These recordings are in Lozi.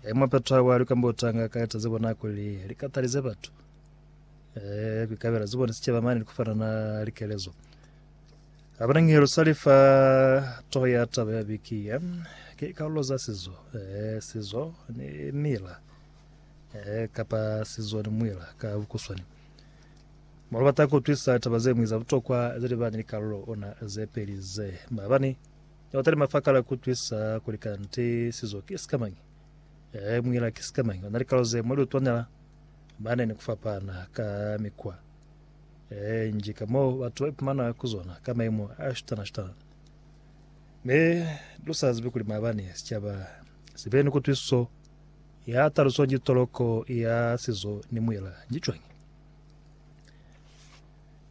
E mwa phetwabo ya likambotanga ka etaze bona kuli likatalize batu e kuikabela zibone sicaba mane likufana na likelezo abana ngihelo salifa toho ya taba ya biki ya ke karolo za sizo e sizo ni mila e kapa sizo ni mwila ka bukuswani Molo bata kutwisa taba ze mwiza butokwa ze libane likarolo ona ze peli ze mabani Notali mafakala kutwisa kuli kanti sizo ki sikamañi, e muila ki sikamañi. Ona likalo ze mwa liutwanela bane ni kufapana ka mikwa e nji ka mo batu ba ipumana ku zona ka maimo a shutana shutana. Me lu sa zibi kuli mabani sicaba sibe ni kutwisiso ya taluso nji toloko ya sizo ni muila nji cwañi.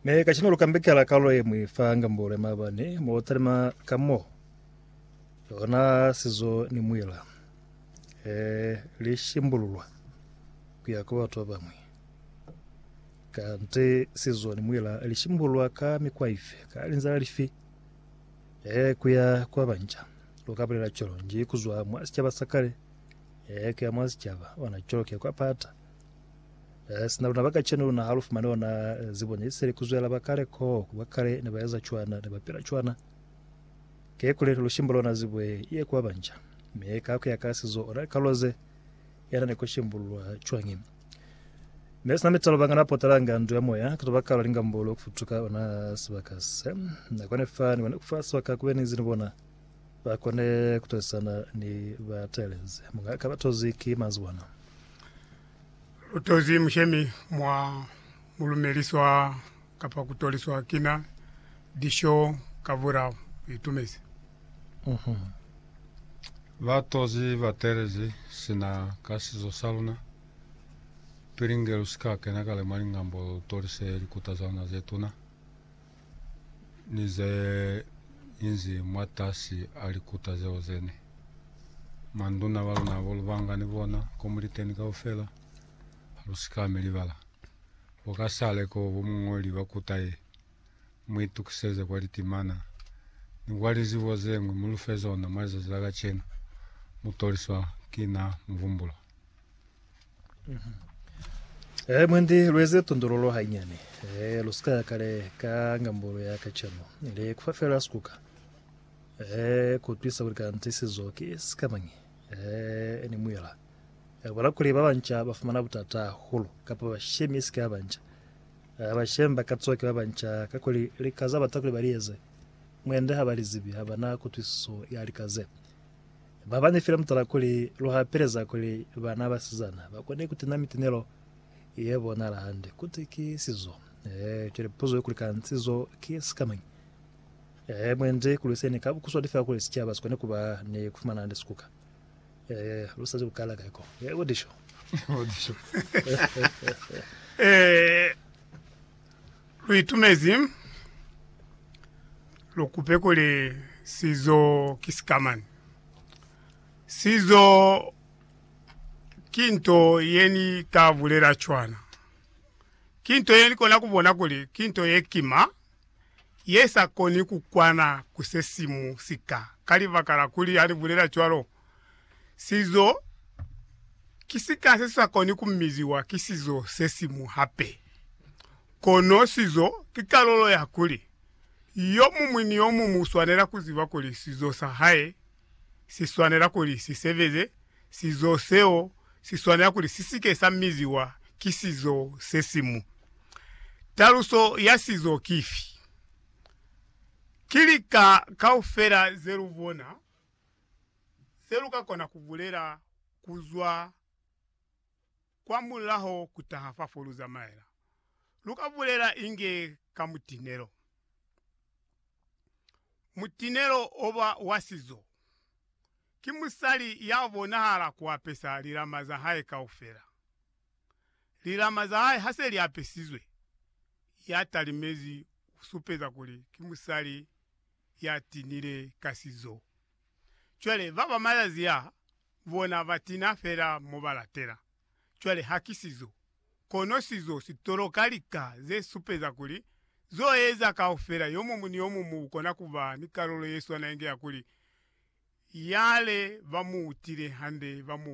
Mi kacenu lu kambekela kalulo ye mwi fa ngambolo ya maabani mo lu talima ka mo lona sizo ni muila e li shimbululwa ku ya kwa batu ba bañwi. Kanti sizo ni muila li shimbululwa ka mikwa ifi, ka linzila lifi? E ku ya kwa banca. Lu ka bulela cwalo nji ku zwa mwa sicaba sa kale e ku ya mwa sicaba ona cwalo ku ya kwa pata. Eh, sina luna ba kacenu luna ha lu fumani ona eh, zibo ne seli ku zwela ba kale ko, ku ba kale ne ba eza cwana, ne ba pila cwana. Ke kuli lu shimbula ona zibo ye, ye kuba banja. Me ka ku ya ka sizo, ona kaloze yana ne ku shimbulwa cwangi. Me sina mitalo bangana potalanga ndu ya moya, ka tobakala lingambolo ku futuka ona sibaka se. Na kone fa, ni kone kufa sibaka kube ni zini bona. Ba kone ku tozisana ni ba teelezi. Munga ka ba tozi ki manzwana. Lu tozi mushemi mwa mu lumeliswa kapa ku toliswa kina disho ka vura mu itumezi. Ba tozi ba teelezi sina ka sizo sa luna. Pili nge lu si ka kena kale mwa lingambo lu tolise likuta za luna ze tuna. ni ze inzi mwatasi a likuta zeo zene. Manduna ba luna bo lu banga ni bona ko mu li teni kaufela, ha lu si ka mi libala. Bo ka sale ko bo muñoli ba kuta ye, mu itukiseze kwa litimana ni kwa lizibo zeñwi mu lu fe zona mwa lizazi la kacenu. Mu toliswa ki na Muvumbulwa. Eh, mwendi lueze tondololo hainyani eh, lusika ya kale ka ngambolo ya kacano le kufa fela sikuka eh, kutwisa kuli kanti sizo ki sikamañi eh, ni muyela eh, bola kuli ba banca ba fumana butata hahulu kapa bashemi isika ya banca eh, bashemi ba ka tsoke ba banca ka kuli likaza bata kuli ba lieze mwende ha ba lizibi ha bana kutwisiso ya likaze Ba ba ne file mutala kuli lu hapeleza kuli bana ba sizana ba kone ku tena mitinelo ye bonahala hande kuti ki sizo. Ee, cwale puzo ye kuli kani sizo ki sikamañi? Ee, mwendi ku lwiseni ka bukuswadi fela kuli sicaba si kone ku ba ni ku fumana hande sikuka. Ee, lu sa zwi ku kala kai ko. Ee, bo disho. Bo disho. Ee. Lu itumezi lu kupe kuli sizo ki sikamani. Sizo ki nto ye ni ka bulela cwana. Ki nto ye ni kona ku bona kuli ki nto ye kima, ye sa koni ku kwana ku se siñwi sika, ka libaka la kuli ha ni bulela cwalo, Sizo ki sika se si sa koni ku miziwa ki sizo se siñwi hape. Kono sizo ki kalulo ya kuli yo muñwi ni yo muñwi u swanela ku ziba kuli sizo sa hae si swanela kuli si sebeze, sizo seo si swanela kuli si si ke sa miziwa ki sizo se siñwi. Taluso ya sizo ki fi? Ki lika kaufela ze lu bona. se lu ka kona ku bulela ku zwa kwa mulaho ku taha fa fo lu zamaela. Lu ka bulela inge ka mutinelo. Mutinelo o ba wa sizo. Ki musali ya bonahala ku apesa lilama za hae kaufela. Lilama za hae ha se li apesizwe, ya talimezi u supeza kuli ki musali ya tinile ka sizo. Cwale ba ba malazi a bona ba tina fela mo ba latela. Cwale ha ki sizo, kono sizo si toloka lika ze supeza kuli zo eza kaufela yo mumu ni yo mumu ukona ku ba ni kalulo ye swana inge ya kuli yale ba mu utile hande ba mu